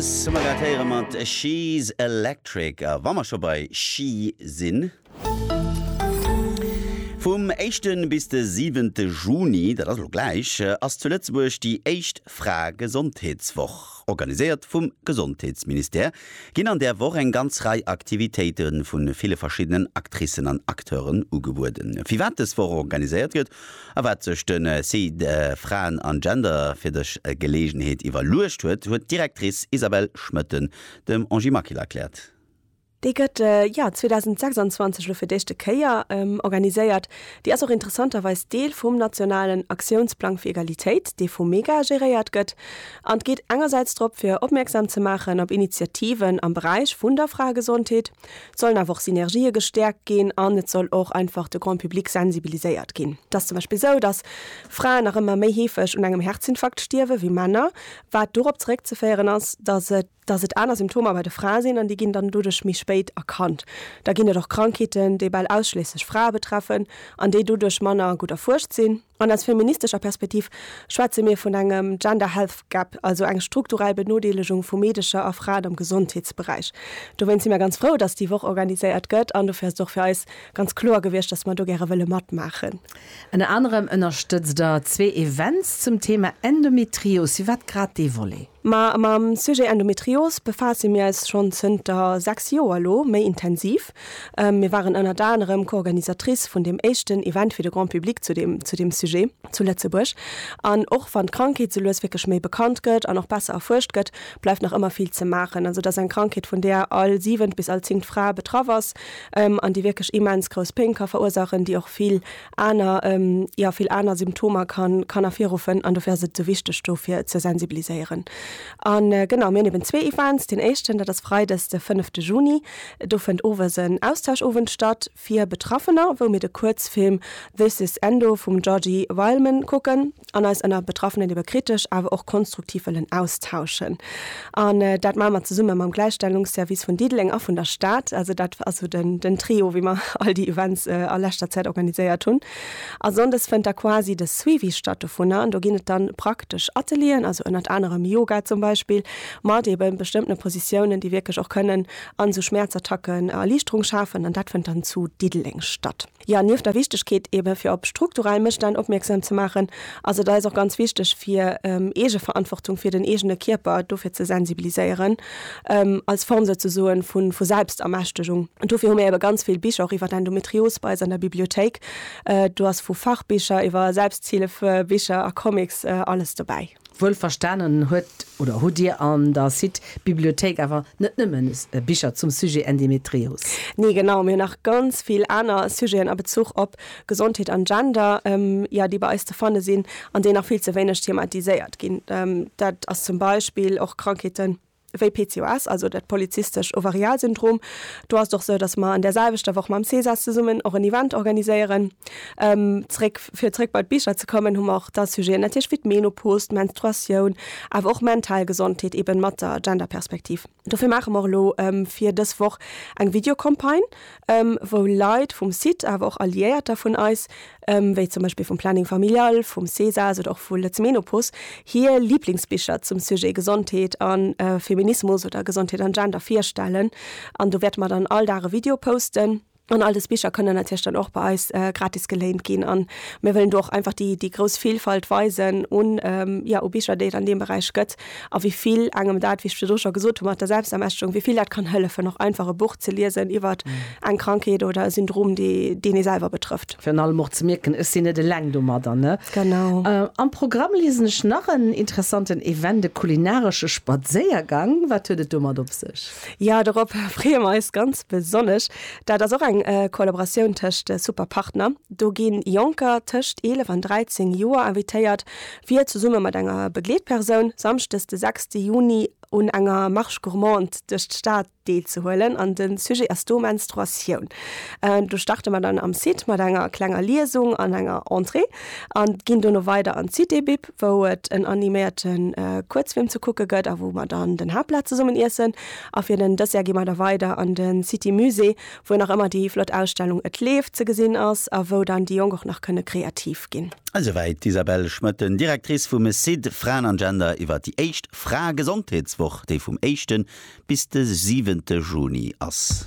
Lass mer dat héiere mat She's Electric. A wa mer scho bei She sinn. Vum éischte bis de siwente Juni, dat ass elo gläich, ass zu Lëtzebuerg déi éischt Frae-Gesondheetswoch. Organiséiert vum Gesondheetsministère ginn an där Woch eng ganz Rei Aktivitéite vu ville verschiddenen Actricen an Acteuren ugebueden. Firwat dës Woch organiséiert gëtt A wat sech de Site Fraen an Gender fir dës Geleegenheet iwwerluecht huet, huet d'Directrice Isabelle Schmoetten dem Angie Maquil erkläert. Déi gëtt, jo, 2026 elo fir d'éischte Kéier organiséiert. Déi ass och interessanterweis Deel vum nationalen Aktiounsplang fir Egalitéit, dee vum MEGA geréiert gëtt. An et geet engersäits drop, fir opmierksam ze maachen op Initiativen am Beräich vun der Fraegesondheet, Et sollen awer och Synergië gestäerkt ginn an et soll och einfach de Grand public sensibiliséiert ginn. Et ass zum Beispill esou, dass Fraen nach ëmmer méi heefeg un engem Herzinfarkt stierwe wéi Männer, wat dorop zeréckzeféieren ass, dass et dass et aner Symptomer bei de Frae sinn an déi ginn dann doduerch méi spéit erkannt. Da ginn et och Krankheeten, déi bal ausschliesslech Frae betreffen an déi doduerch manner gutt erfuerscht sinn. An aus feministescher Perspektiv schwätze mir vun engem Gender Health Gap, also eng strukturell Benodeelegung vu Meedecher a Fraen am Gesondheetsberäich. Dowéinst si mer ganz frou, datt déi Woch organiséiert gëtt an dofir ass et och fir eis ganz kloer gewiescht, datt mer do gäre wëlle matmaachen. Ënner anerem ënnerstëtzt der zwee Events zum Thema Endometrios. Firwat grad dee Volet? Ma mam Sujet Endometrios befaasse mir eis schonn zënter sechs Joer elo méi intensiv. Mir waren ënnert anerem Co-Organisatrice vun deem éischten Event fir de Grand Public zu deem, zu deem Sujet zu Lëtzebuerg. An och wann d'Krankheet sou lues wierklech méi bekannt gëtt an och besser erfuerscht gëtt, bleift nach ëmmer vill ze maachen. Also et ass eng Krankheet, vun där all siwent bis all zingt Fra betraff ass an déi wierklech immens grouss Péng ka verursaachen, déi och vill aner, jo, vill aner Symptomer kann, kann ervirruffen. An dofir ass et esou wichteg, dofir ze sensibiliséieren. A genau, mir hunn eben zwee Events. Deen éischten, dat ass Freides, de fënnefte Juni, Do fënnt owes en Austauschowend statt fir Betraffener, wou mir de Kuerzfilm This Is Endo vum Georgi Wileman kucken an eis ënner Betraffenen iwwer kritesch awer och konstruktiv wëllen austauschen. An dat maache mer zesumme mam Gläichstellungsservice vun Diddeleng a vun der Stad. Also dat ass esou den Trio, wéi mer all déi Events a leschter Zäit organiséiert hunn. A Sonndes fënnt da quasi de Suivi statt dovunner an do ginn et dann praktesch Atelieren, also ënnert anerem Yoga zum Beispill, mat eben bestëmmtene Positiounen, déi wierklech och kënnen an esou Schmäerzattacken Erliichterung schafen an dat fënnt dann zu Diddeleng statt. Jo, nieft der Wichtegkeet eben fir op strukturell Mësstänn opmierksam ze maachen, ass et eis och ganz wichteg fir Eegeverantwortung fir den eegene Kierper dofir ze sensibiliséieren als Form souzesoen vu vu Selbstermächtegung. An dofir hu mir ebe ganz vill Bicher och iwwer d'Endometrios bei eis an der Bibliothéik. Do ass vu Fachbicher iwwer Selbsthilfebicher a Comics alles dobäi. Wuel verstanen huet oder hutt Dir an der Site Bibliothéik awer net nëmmen Bicher zum Sujet Endemetrios? Nee genau, mir hunn nach ganz vill aner Sujeten a Bezuch op Gesondheet an Gender, jo, déi bei eis ze fanne sinn an déi nach vill ze wéineg thematiséiert ginn. Dat ass zum Beispill och Krankheeten wéi PCOS, also dat polyzystescht Ovarialsyndrom. Do ass et och esou, dass mer an där selwechter Woch mam Cesas zesummen och en Event organiséieren. Zréck, fir zréck bei d'Bicher ze kommen, hu mer och da Sujeten natierlech wéi d'Menopos, d'Menstruatioun, awer och mental Gesondheet, eeben mat der Genderperspektiv. Dofir maache mer elo fir dës Woch eng Videocampagne, wou Leit vum Site, awer och Alliéierter vun eis, wéi zum Beispill vum Planning Familial, vum Cesas oder och vu Lëtz Menopos, hir Liblingsbicher zum Sujet Gesondheet a Feminismus oder Gesondheet an Gender virstellen. An do wäerte mer dann all Dag e Video posten. An all des Bicher kënnen natierlech dann och bei eis gratis geléint ginn. An mir wëllen do och einfach déi, déi grouss Vilfalt weisen un, jo, u Bicher, déi et an deem Beräich gëtt a wéi vill engem dat, wéi ech virdru scho gesot hu mat der Selbstermächtigung, wéi vill dat kann hëllefen, och einfach e Buch ze liesen iwwer eng Krankheet oder e Syndrom, dee, deen ee selwer betrëfft. Virun allem och ze mierken, ech sinn net eleng domadder, ne? Genau. Am Programm liesen ech nach en interessanten Event, e kulinaresche Spadséiergang. Wat huet et domat op sech? Jo, dorop freeë mer eis ganz besonnesch. Dat ass och eng Kollaboratioun tëscht Super Partner. Do gi Jonker tëscht 11 an 13 Joer invitéiert, fir zesumme mat enger Begleetpersoun samschdes de 6 Juni un enger Marche gourmande duerch d'Stad deelzehuelen. An de Sujet ass do Menstruatioun. Do starte mer dann am Site mat enger klenger Liesung an enger Entrée an ginn dono weider an d'Cité Bib. wou et en animéierte Kuerzfilm ze kucke gëtt a wou mer dann den Haaptplat zesummen iessen. A fir den Dessert gi mer da weider an de City Musée, wou nach ëmmer déi flott Ausstellung Et leeft ze gesinn ass a wou dann déi Jonk och nach kënne kreativ ginn. Esouwäit d'Isabelle Schmoetten, Directrice vum CID Fraen an Gender iwwer déi éischt Fraegesondheetswoch, déi vum éischte bis de siwente Juni ass.